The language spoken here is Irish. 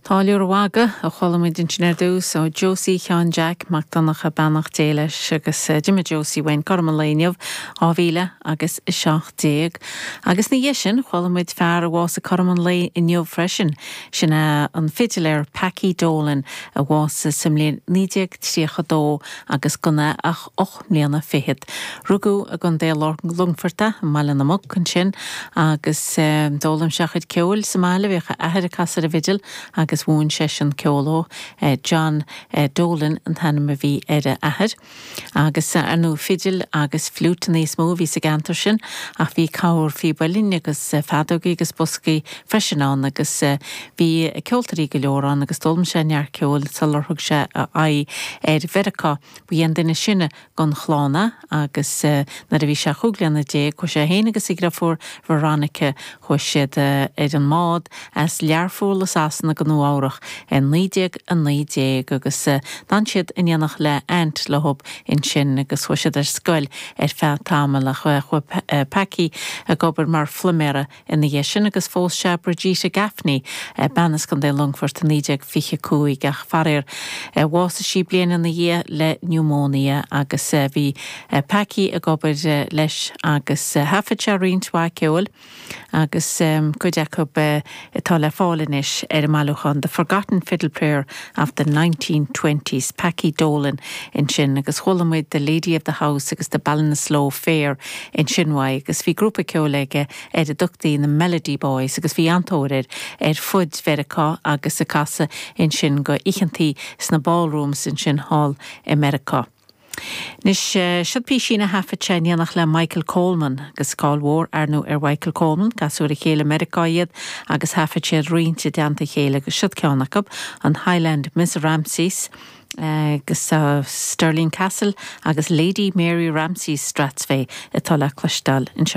Táilliúir an Mhagaidh a chuala muid ansin ar dtús, ó Josie Sheáin Jeaic Mac Donncha, beannacht Dé leis, agus d'imigh Josie uainn cothrom an lae inniu, 2017. Agus ina dhiaidh sin, chuala muid fear a bhásaigh cothrom an lae inniu freisin, sin é an fidiléir Packie Dolan, a bhásaigh sa mbliain 1932 agus gan é ach ocht mbliana fichead. Rugadh i gContae Longfoirt, i mBaile na Muc ansin, agus d'fhoghlaim sé a chuid ceoil sa mbaile. Bhíodh a athair ag casadh an fhidil agus mhúin seisean ceol dhó. John Dolan an t-ainm a bhí ar a athair. Agus, ar ndóigh, fidil agus fliúiteanna is mó a bhí sa gceantar sin, ach bhí corrphíb uillinn agus feadógaí agus boscaí freisin ann, agus bhí ceoltóirí go leor ann, agus d'fhoghlaim sé neart ceoil sular thug sé a aghaidh ar Mheiriceá. Ba é an duine ba shine den chlann é agus nuair a bhí sé chúig bliana déag chuaigh sé féin agus a dhreabhar Veronica, chuaigh siad ar an mbád as Learpholl i Sasana go Nua Eabhrach i 1919 agus d'fhan siad in éineacht le aint leob ansin agus chuaigh siad ar scoil ar feadh tamaill ach chuaigh Packie ag obair mar phluiméara Ina dhiaidh sin agus phós sé Bridget Gaffney, bean as Contae Longfoirt, i 1925 ach faraor bhásaigh sí bliain ina dhiaidh le niúmóinia agus bhí Packie ag obair leis agus thaifead sé roinnt mhaith ceoil agus cuid acu atá le fáil anois ar an mbailiúchán The Forgotten Fiddle Player of the Nineteen Twenties, Packie Dolan ansin agus chuala muid The Lady of the House agus The Ballinasloe Fair Ansin uaidh agus bhí grúpa ceoil aige ar a dtugtaí na Melody Boys agus bhí an-tóir air ar fud Mheiriceá agus ag casadh ansin ag oícheantaí sna ballrooms ansin thall i Meiriceá. Anois, siod písín a thaifead sé in éineacht le Michael Coleman, agus cáil mhór arnú ar Mhichael Coleman, casadh ar a chéile i Meiriceá iad agus thaifead siad roinnt i dteannta a chéile agus siod ceann acu, an Highland Miss Ramsay's. agus Stirling Castle agus Lady Mary Ramsay Strathspey atá le cloisteáil anseo.